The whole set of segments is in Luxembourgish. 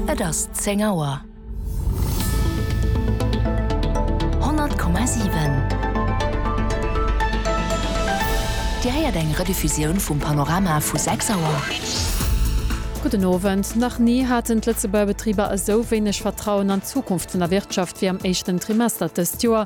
Et ass zéng Auer. 100,7 Dir héiert eng Rediffusioun vum Panorama vu 6 Auer. Gudden Owend. Nach ni haten d'Lëtzebuerger Betriber esou wéineg Vertrauen an d'Zukunft vun der Wirtschaft wéi am éischten Trimester dëst Joer.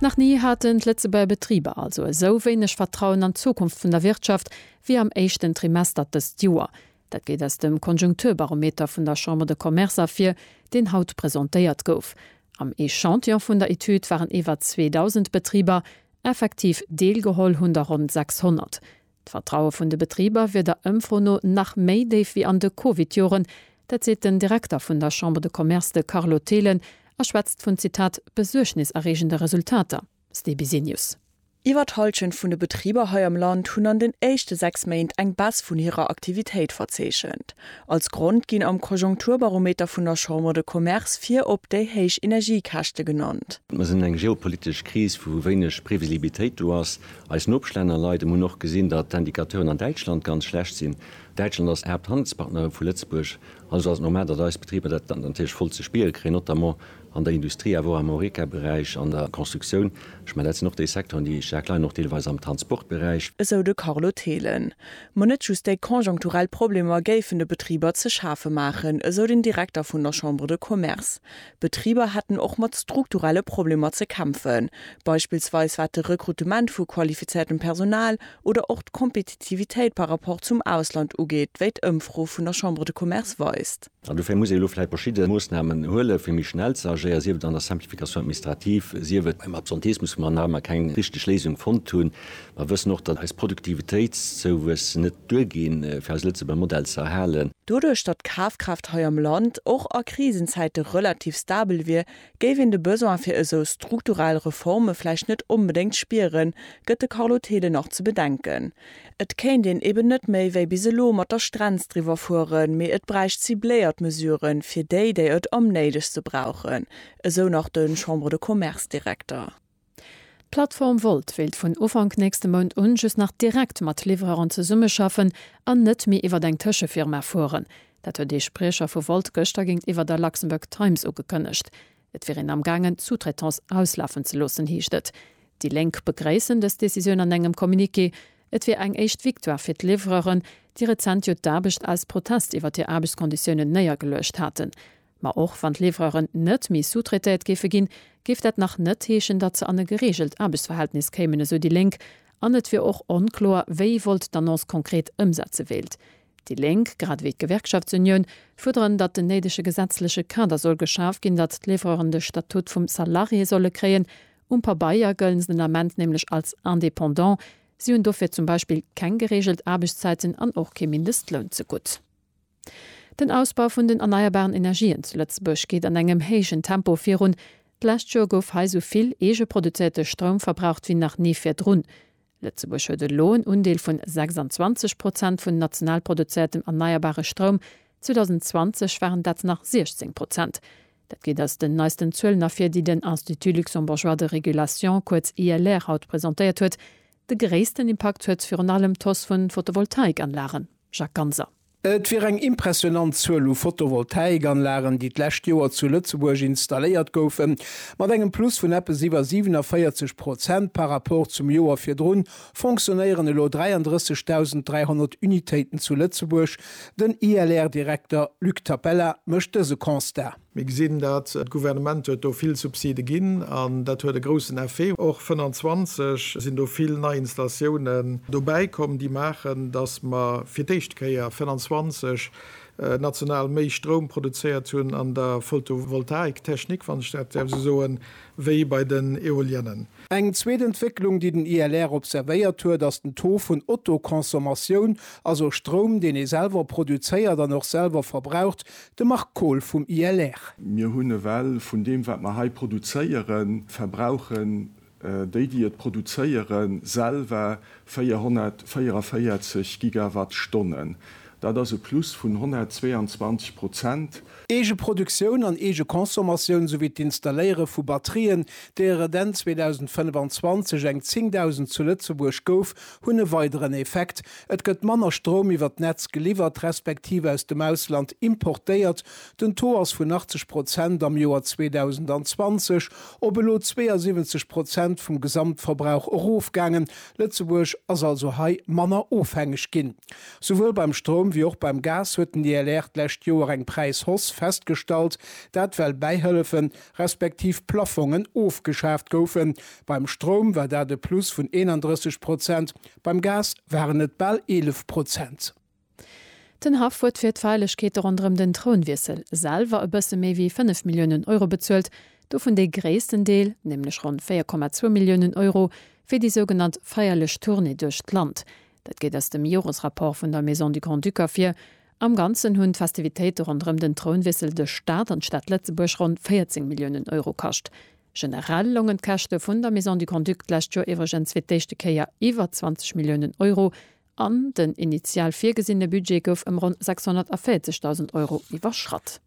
Nach ni haten d'Lëtzebuerger Betriber also esou wéineg Vertrauen an d'Zukunft vun der Wirtschaft wéi am éischten Trimester dëst Joer. Dat geet aus dem Konjunkturbarometer vun der Chambre de Commerce ervir, deen haut presentéiert gouf. Am Echantillon vun der Etüd waren iwwer 2.000 Betriber, effektiv deelgeholl hunn der ronn 600. D'Vertraue vun de Betriber wier der Ëmfro no nach méi déif wéi an de Covid-Joren. Dat seet den Direkter vun der Chambre de Commerce, de Carlo Thelen, a schwätzt vun, Zitat, besuergniserreegende Resultater. StBsenius. Iwwer d'Hallschent vun de Betriber hei am Land hunn an den éischte 6 Méint eng Baisse vun hirer Aktivitéit verzeechent. Als Grond ginn am Konjunkturbarometer vun der Chambre de Commerce virop déi héich Energiekäschte genannt. Mer sinn eng geopolitesch Kris, wou wéineg Previsibilitéit do ass, Eis Nopeschlänner leiden, hunn och gesinn, datt d'Indicateuren an Däitschland ganz schlecht sinn. Däitschland ass d'Haapthandelspartnerin vu Lëtzebuerg, also ass et normal, datt eis Betriber dat natierlech voll ze spiere kréien, notamment an der Industrie, awer och am Horeca-Beräich, an der Constructioun. Ech mengen, dat sinn och déi Secteuren, déi staark leiden, och deelweis am Transportberäich. Esou de Carlo Thelen. Ma net just déi konjunkturell Problemer géifen de Betriber ze schafe maachen, esou den Direkter vun der Chambre de Commerce. D'Betriber hätten och mat strukturelle Problemer ze kämpfen, beispillsweis wat de Rekrutement vu qualifiziertem Personal oder och d'Kompetitivitéit par rapport zum Ausland ugeet, wéi d'Ëmfro vun der Chambre de Commerce weist. An dofir muss ee elo vläicht verschidde Moossnamen huelen, fir méi schnell ze agéieren, sief et an der Simplification administrative, sief et beim Absenteesmusmandat, mä keng richteg Léisung fonnt hunn, Mer wëssen och, datt eis Produktivitéitszouwuess net duerginn, fir eis Lëtzebuerger Modell ze erhalen. Doduerch, datt d'Kafkraaft hei am Land och a Krisenzäite relativ stabel wier, géif een de Besoin fir esou strukturell Reforme vläicht net onbedéngt spieren, gëtt de Carlo Thelen nach ze bedenken. Et kéint een eben net méi wéi bis elo mat der Strenz driwwer fueren, mee et bräicht cibléiert Mesuren, fir déi, déi et am néidegste brauchen, esou nach de Chambre-de-Commerce-Direkter. D'Plattform Wolt wéilt vun Ufank nächste Mount un just nach direkt mat Livreuren zesummeschaffen an net méi iwwer eng Tëschefirma fueren. Dat huet ee Spriecher vu Wolt gëschter géintiwwer der Luxembourg Times ugekënnegt. Et wier een am gaangen d'Sous-traitance auslafen ze loossen, heescht et. Déi Lénk begréissen dës Decisioun an engem Communiqué. Et wier eng éischt Victoire fir d'Livreuren, déi rezent jo d'Aarbecht aus Protest iwwer hir Aarbechtskonditiounen néiergeluecht haten. Ma och wann d'Livreuren net méi sous-traitéiert géife ginn, géif dat nach net heeschen, datt se an e gereegelt Aarbechtsverhältnis kéimen, esou déi Lénk. An et wier och onkloer, wéi Volt d'Annonce konkret ëmsetze wéilt. Déi Lénk, grad ewéi d'Gewerkschaftsunioun, fuerderen, datt den néidege gesetzleche Kader soll geschaf ginn, datt d'Livreuren de Statut vum Salarié solle kréien. Um Pabeier gëllen se den Ament nämlech als Indépendant. Si hunn dofir zum Beispill keng gereegelt Aarbechtszäiten an och kee Mindestloun ze gutt. Den Ausbau vun den erneierbaren Energien zu Lëtzebuerg geet an engem héijen Tempo virun. D'lescht Joer gouf hei sou vill eegeproduzierte Stroum verbraucht wéi nach ni virdrun. Lëtzebuerg huet elo en Undeel vun 26 Prozent vun national produziertem erneierbare Stroum, 2020 waren dat nach 16 Prozent. Dat geet aus den neisten Zuelen ervir, déi den Institut luxembourgeois de régulation, kuerz ILR, haut presentéiert huet. De gréissten Impakt huet virun allem d'Hausse vu Photovoltaikanlagen, Jacques Ganser. Et wier eng impressionant Zuel u Photovoltaikanlagen, déi d'lescht Joer zu Lëtzebuerg installéiert goufen, mat engem Plus vun eppes iwwer 47 Prozent par rapport zum Joer virdrun fonctionnéieren elo 33.300 Unitéiten zu Lëtzebuerg. Den ILR-Direkter Luc Tapella mécht dëse Constat. Mir gesinn dat, d'Gouvernement huet do vill Subside ginn an dat huet e groussen Effet. Och 25 sinn do vill nei Installatiounen dobäi komm, déi maachen, datt mer fir d'éischt Kéier 25 national méi Stroum produzéiert hunn an der Photovoltaiktechnik, wann ech dat däerf esou soen, wéi bei den Eoliennen. Eng zweet Entwécklung, déi den ILR observéiert huet, ass den Taux vun Autoconsommatioun, also Stroum, deen ee selwer produzéiert an och selwer verbraucht, De Marc Kohl vum ILR. Mir hunn ewell vun deem, wat mer hei produzéieren, verbrauchen déi, déi et produzéieren, selwer 444 Gigawattstonnen. Dat ass e Plus vun 122 Prozent. Eege Produktioun an eege Consommatioun souwéi d'Installéiere vu Batterien, deer et Enn 2025 eng 10.000 zu Lëtzebuerg gouf, hunn e weideren Effekt, Et gëtt manner Stroum iwwer d'Netz geliwwert, respektiv aus dem Ausland importéiert, den Taux ass vun 80 Prozent am Joer 2020 op elo 72 Prozent vum Gesamtverbrauch erofgaangen. Lëtzebuerg ass also hei manner ofhängeg ginn. Souwuel beim Stroum wéi och beim Gas huet den ILR d'lescht Joer eng Präishausse festgestallt, dat well bäihëllefen, respektiv Plaffongen ofgeschaaft goufen. Beim Stroum war dat e Plus vun 31 Prozent, beim Gas waren et bal 11 Prozent. Den Haff huet fir d'Feierlechkeete ronderëm den Trounwiessel selwer e bësse méi wéi 5 Milliounen Euro bezuelt, dovun dee gréissten Deel, nämlech ronn 4,2 Milliounen Euro, fir déi sougenannt feierlech Tournée duerch d'Land. Dat geet aus dem Joresrapport vun der Maison du Grand-Duc ervir, Am Ganzen hunn d'Festivitéite ronderëm den Trounwiessel de Staat an d'Stad Lëtzebuerg ronn 14 Milliounen Euro kascht. Generell longen d'Käschte vun der Maison du Grand-Duc d'lescht Joer iwwregens fir d'éischte Kéier iwwer 20 Milliounen Euro an den initial virgesinne Budget gouf ëm ronn 640.000 Euro iwwerschratt.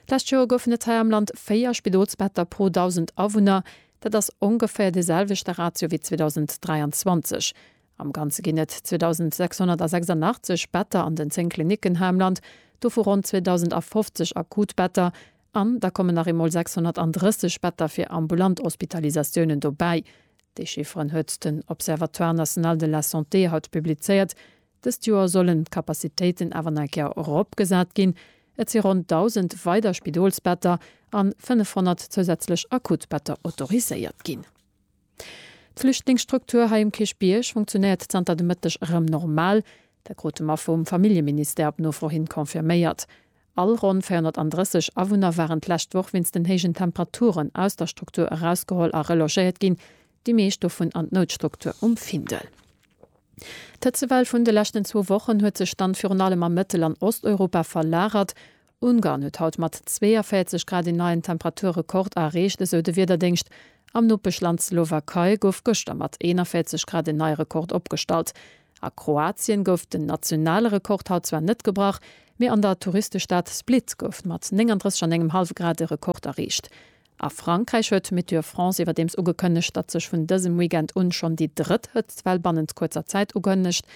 D'lescht Joer goufen et hei am Land 4 Spidolsbetter pro 1.000 Awunner. Dat ass ongeféier dee selwechte Ratio wéi 2023. Am Ganze ginn et 2.686 Better an den 10 Klinicken hei am Land, dovu ronn 2.050 akut Better. An da kommen nach eemol 630 Better fir ambulant Hospitalisatiounen dobäi. Déi Chifferen huet den Observatoire national de la santé haut publizéiert. Dëst Joer sollen d'Capacitéiten awer nach eng Kéier eropgesat ginn. Et si ronn 1.000 weider Spidolsbetter an 500 zousätzlech Akutbetter autoriséiert ginn. D'Flüchtlingsstruktur hei um Kierchbierg funktionéiert zanter de Mëtteg erëm normal. Dat krute mer vum Familljeministère op Nofro hin confirméiert. All ronn 430 Awunner waren d'lescht Woch wéinst den héijen Temperaturen aus der Struktur erausgeholl a relogéiert ginn. déi meescht dovun an d'Noutstruktur um Findel. D'Hëtzewell vun de leschten zwou Wochen huet sech dann virun allem a Mëttel an Osteuropa verlagert. Ungarn huet haut mat 42 Grad een neien Temperaturrekord erreecht, esou de Wiederdéngscht. Am Nopeschland Slowakei gouf gëschter mat 41 Grad en neie Rekord opgestallt. A Kroatien gouf den nationale Rekord haut zwar net gebrach, mee an der Touristestad Split gouf mat 39 an engem hallwe Grad e Rekord erreecht. A Frankräich huet Météo France iwwerdeems ugekënnegt, datt sech vun dësem Weekend un schonn déi drëtt Hëtztwell bannent kuerzer Zäit ukënnegt.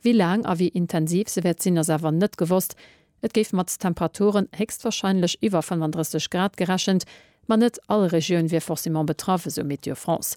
Wéi laang a wéi intensiv se wäert sinn, ass awer net gewosst. Et géif mat Temperaturen héchstwarscheinlech iwwer 35 Grad gerechent, ma net all Regioun wier forcément betraff, esou Météo France.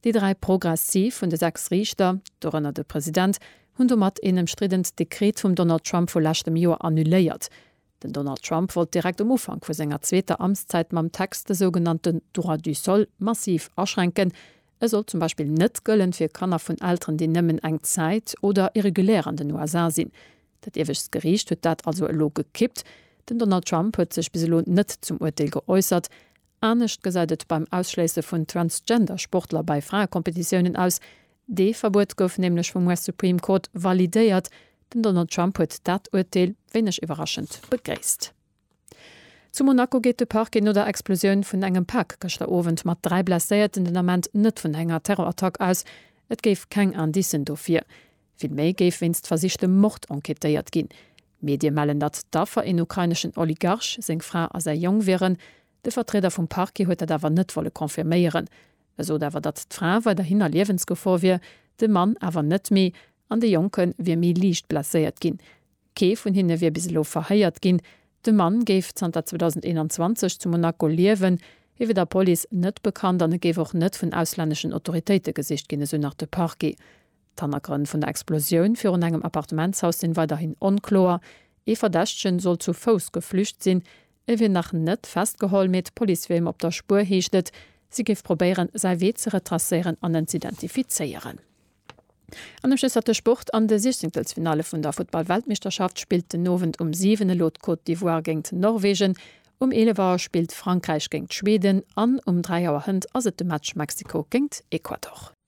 Déi dräi Progressiv vun de sechs Riichter, dorënner de President, hunn domat een ëmstriddent Dekret vum Donald Trump vu leschtem Joer annuléiert. Den Donald Trump wollt direkt um Ufank vu senger zweeter Amtszäit mam Text de sougenannte Droit du sol massiv aschränken, e sollt zum Beispill net gëllen fir Kanner vun Elteren, déi nëmmen eng Zäit oder irregulär an den USA sinn. Dat iewescht Geriicht huet dat also elo gekippt. Den Donald Trump huet sech bis elo net zum Urteel geäussert, Anescht gesäit et beim Ausschléisse vun Transgender-Sportler bei Fraekompetitiounen aus. Dee Verbuet gouf nämlech vum US Supreme Court validéiert. Den Donald Trump huet dat Urteel, wéineg iwwerraschend, begréisst. Zu Monaco geet de Parquet no der Explosioun vun engem Pak gëschter Owend mat dräi Blesséierten den Ament net vun enger Terrorattack aus. Et géif keng Indicen dofir Vill méi géif wéinst versichtem Mord enquêtéiert ginn. Medie mellen, datt d'Affer een ukraineschen Oligarch, seng Fra a säi Jong wieren. De Vertrieder vum Parquet huet dat awer net wolle confirméieren. E sot awer, datt d'Fra weiderhin a Liewensgefor wier, de Mann awer net méi an de Jonke wier méi liicht blesséiert ginn. Kee vun hinne wier bis elo verhéiert ginn. De Mann géif zanter 2021 zu Monaco liewen. Hie wier der Police net bekannt an et géif och net vun auslänneschen Autoritéite gesicht ginn, esou nach de Parquet. D'Hannergrënn vun der Explosioun virun engem Appartementshaus sinn weiderhin onkloer. Ee Verdächtegen soll zu Fouss geflücht sinn. E wier nach net festgeholl, mee d'Police wier him op der Spuer, heescht et. Si géif probéieren, säi Wee ze retracéieren an en z'identifizéieren. An ëm Schlësser de Sport, An de Siechzenkelsfinalle vun der Futtball-Weltmeeschterschaft spillt den Owend um 7 elo d'Côte d'Ivoire géingt Norwegen, um 11 Auer spillt Frankräich géingt Schweden an um 3 Auer hënt ass et de Match Mexiko géingt Ecuador.